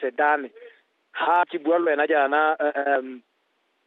Sedane. Ha ke bua le wena jaana um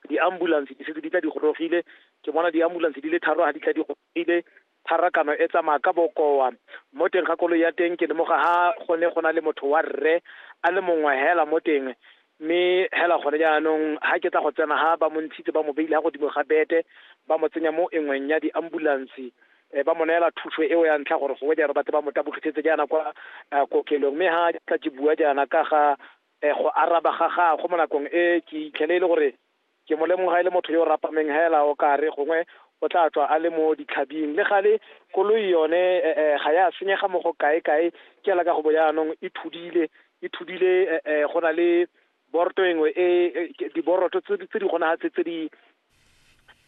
di-ambulance di setse di tla di gorogile ke bona di-ambulance di le tharo ha di tla di gorogile pharakano e tsamaya ka bokoa mo teng ga koloi ya teng ke lemoga ha gone go na le motho wa rre a le mongwe hela mo teng mme hela gone jaanong ha ke tla go tsena ha ba mo ntshitse ba mo beile ha godimo ga bete ba mo tsenya mo engweng ya di-ambulance Eh, ba mo neela thuso eo ya ntlha gore gongwe jaanong batle ba mo tabogitsetse jaana kwa eh, kokelong mme ga tla ke bua jaana ka ga eh, go araba ga gagwe mo nakong e ke itlhele e le gore ke mo lemoga e le motho yo o rapameng hela o ka re gongwe o tla tswa a le mo ditlhabing le gale koloi yone eh, eh, ga ya senyega mo go kae kae ke ela ka go bo jaanong e thudile e thudile eh, eh, go na le boroto engwe e diboroto tse di gona tse tse di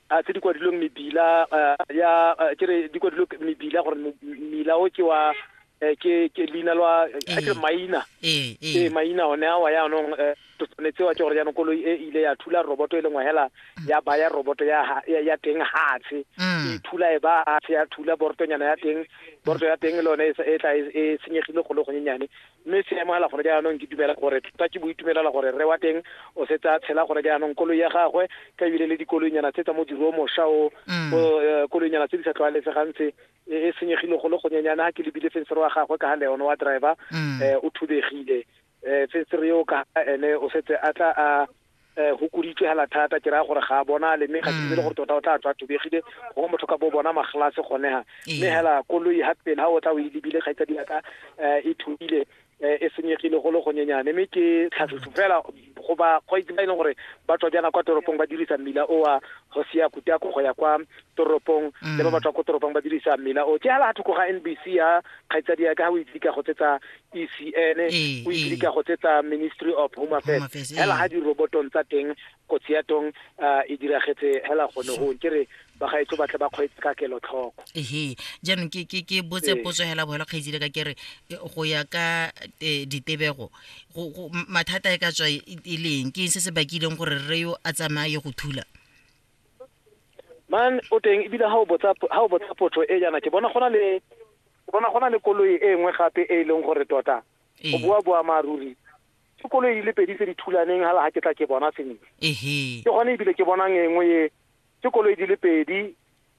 a tse di kwadilweng mebila ya ke re di kwadilwe mebila gore mmila o ke wa Eh, ke ke leina lwa eh, eh. ke maina ee maina one awa yaanong to tshwanetse wa ke gore jaanong koloi e ile ya thula roboto e lengwe hela mm. ya baya roboto ya ya teng hatshe mm. e thula e ba hatshe ya thula borotonyana ya teng boroto ya teng le one e tla e senyegile go le gonyenyane Mme se amogela gone jaanong, ke dumela gore tota ke bo itumelela gore rre wa teng o setse a tshela gone jaanong. Koloi ya gagwe ka ebile le dikoloinyana tse tsa modiro o mosha o, bo eh, koloinyana tse di sa tlwaelesegang tse, e e senyegile go le gonyenyane ha ke lebile fensere wa gagwe ka ha le one wa driver eh, o thubegile eh, fensere eo ka ha ene o setse a tla a um go kuditswe hela thata ke raya gore ga a bonale mme ga ke dire mm. gore tota o tla tswa thubegile go motho ka bo bona maglase gone ha mme hela koloi ga pele ga o tla o e lebile kgaitsadi ya ka um e thubile Eh, e senyegile go le gonyenyane mme ke tlhatlhotso fela go ba kgwaitse ba e leng gore ba tswa jaana kwa toropong ba dirisa mmila o wa go sia kutako go ya kwa toropong mm. le ba ba tswa ko toropong ba dirisa mmila o ke hala thoko ga n b c ya kgaitsadi ya ka ga o itse ka go tsetsa ECN o ikile ka go tsetsa Ministry of Home Affairs hela ga dirobotong tsa teng kotsi ya tong e diragetse hela gone go ke re bagaetso batle ba kgweetse ka kelotlhoko ehe jaanong ke ke ke botse potso hela bohela kgaitsile ka kere go ya ka ditebego mathata e ka tswa e leng ke se se bakileng gore re yo a tsamaye go thula man o teng ebile ga o botsa ga o botsa potso e jaana ke bona gona le ke bona gona le koloi e nngwe gape e e leng gore tota o bua bua maaruri ke koloi di le pedi tse di thulaneng hala ga ke tla ke bona sentle ehe ke gone ebile ke bonang e nngwe e ke koloi di le pedi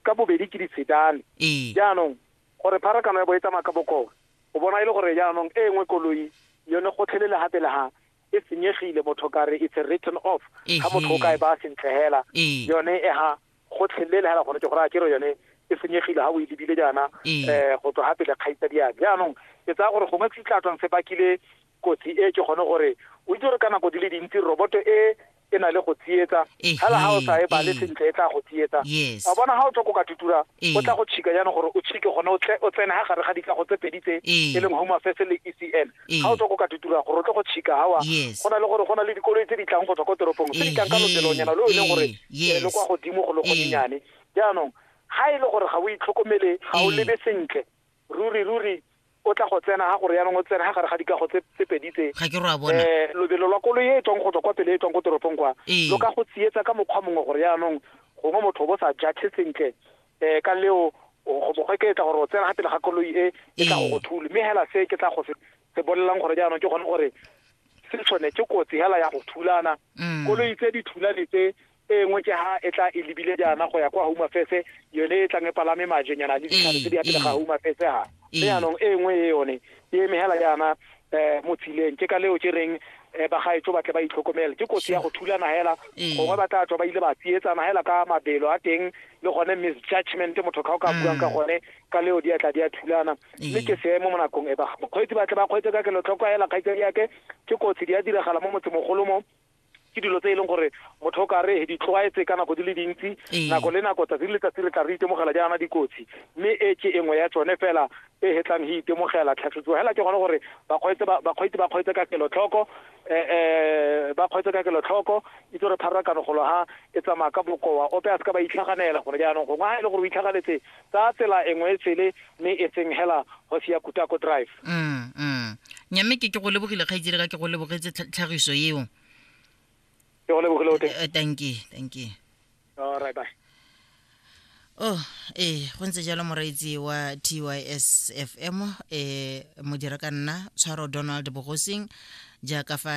ka bobedi ke ditshedane ee jaanong gore pharakano ya bo e tsamaya ka bokoo o bona e le gore jaanong e nngwe koloi yone gotlhelele gape le ga e senyegile motho ka re it's a written off ga motho o ka e ba sentle hela yone e ha go tlhelele hela gore ke gore a kere yone e senyegile ga o e lebile jaana um go tswa gape le kgaitsa diane jaanong ke tsaya gore gongwe se tla tswang se bakile kotsi e ke gone gore o itse gore ka nako di le dintsi roboto e e na le go tsietsa fela ga o sa e bale sentle e tla go tsietsa a bona ga o tlhoko ka tutura o tla go tšhika jaanong gore o tšhike gone o tsene ga gare ga dikago tse pedi tse e leng home affairs le e c n ga o tlhoko ka tutura gore o tle go tšhika gawa go na le gore go na le dikoloi tse di tlang go tswa ko toropong tse di tlang ka lobelonyana lo e leng gore le kwa godimo go le golenyane jaanong ga e le gore ga o itlhokomele ga o lebe sentle ruri ruri o tla go tsena ga gore yaanong o tsena ga gare ga dikago tse pedi tse ga ke roa bona eh lobelo lwa koloi e tswang go tswa kwa pele e tswang ko toropong kwa ee. lo ka go tsietsa ka mokgwa mongwe gore yaanong gongwe motho o bo sa jathe sentle um ka leo go bogwe ke tla gore o tsena ga pele ga koloi e e tla go go ee. thule mme hela se ke tla go se bolelang gore jaanong ke gone gore se tshwane ke kotsi hela ya go thulana mm. koloi tse di thulane tse e nngwe ke ha e tla e lebile jaana go ya kwa home affairs yone e tlang e palame majenyana le ditlhare tse di ya pele ga home affairs ha mme yaanong e nngwe e yone e emegela jaana um mo tsileng ke ka leo ke reng um bagaetso ba tle ba itlhokomele ke kotsi ya go thulana hela gongwe ba tla tswa ba ile ba tsietsana hela ka mabelo a teng le gone misjudgment motho ka o ka buang ka gone ka leo di atla di a thulana mme ke seemo mo nakong e ba mokgweetsi ba tle ba kgweetse ka kelotlhoko hela kgaitsadi yake ke kotsi di a diragala mo motsemogolo mo ke dilo tse e leng gore motho o kare di tlwaetse ka nako di le dintsi ee. nako le nako tsatsi le letsatsi re tla re itemogela jaana dikotsi mme e ke engwe ya tsone fela e hetlang he itemogela tlhatlhotsiwa fela ke gone gore bakgweetsi ba kgweetse ka kelotlhoko um ba kgweetse ka kelotlhoko itse gore pharakano golo ha e tsamaya ka bokoa ope a se ka ba itlhaganela gone jaanong gongwe ga e le gore o itlhaganetse Ka tsela engwe e tshele mme e tseng hela hosi ya Kutako Drive. Mm, mm. Nyamme ke ke go lebogile kgaitsedi ka ke go lebogetse tlhagiso eo. Ke go lebogile o teng. Eh, thank you, thank you. All right, bye. oh ee go ntse jalo moreetsi wa tys fm um modira ka nna tshwaro donald bogosing jaaka fa